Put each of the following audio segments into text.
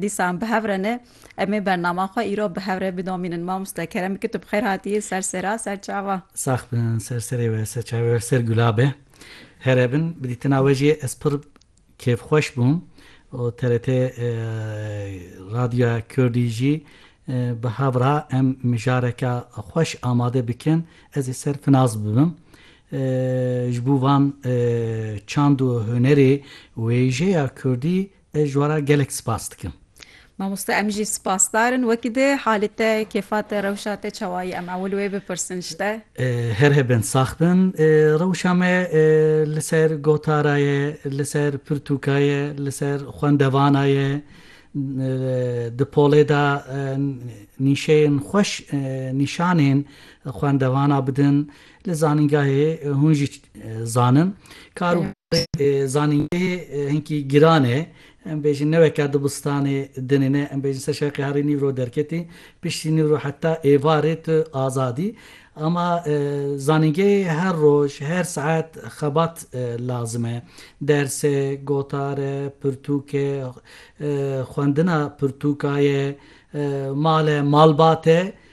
Dîsan bi hev re ne. Em ê bernama xwe îro bi hev re bidomînin. Mamoste Kerem Kit tu bi xêr hatiyî ser sêra ser çava. Sax bin ser serê we ser çavê we ser gula be. Here bin bi dîtina we jî ez pir kêfxweş bûm û TRT Radyoya Kurdî jî bi hev ra em mijareke xweş amade bikin ez ê ser finaz bibim. Ji bo van çand û hunerê wêjeya kurdî Ez ji wan re gelek spas dikim. Mamoste em jî spasdar in. Wekî di halê te, kêfa te, rewşa te çawa ye? Em ewil wê bipirsin ji te. Her hebin, sax bin. Rewşa me li ser gotara ye, li ser pirtûka ye, li ser xwendevana ye. Di polê de nîşeyên xweş nîşanên xwendevana bidin. Li zanîngehê hûn jî zanin. Kar û barê zanîngehê hinkî giran e. Em bêjin ne weke dibistanê dinê ne. Em bêjin ser şeqê herî nîv ro derketî. Piştî nîv ro heta êvarê tu azad î. Ama zanîngehê her roj, her saet xebat lazim e. Ders e, gotar e, pirtûk e, xwendina pirtûka ye, mal e, malbat e.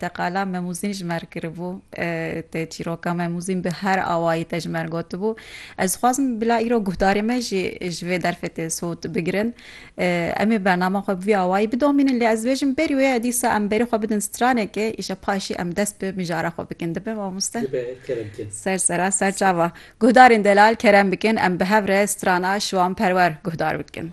Teqala Memûzîn ji me re kiribû. Tê çîroka Memûzîn bi her awayî tê ji me re gotibû. Ez dixwazim bila îro guhdarên me jî ji vê derfê tê sowt bigirin. Em ê bernama xwe bi vî awayî bidomînin lê ez dibêjim berî wê ya dîsa em berî xwe bidin stranekê îşa paşî em dest bi mijara xwe bikin. Dibe mamoste? Dibe, kerem bikin. Ser sera ser çava. Guhdarên delal kerem bikin em bi hev re strana Şiwanperwer guhdar bikin.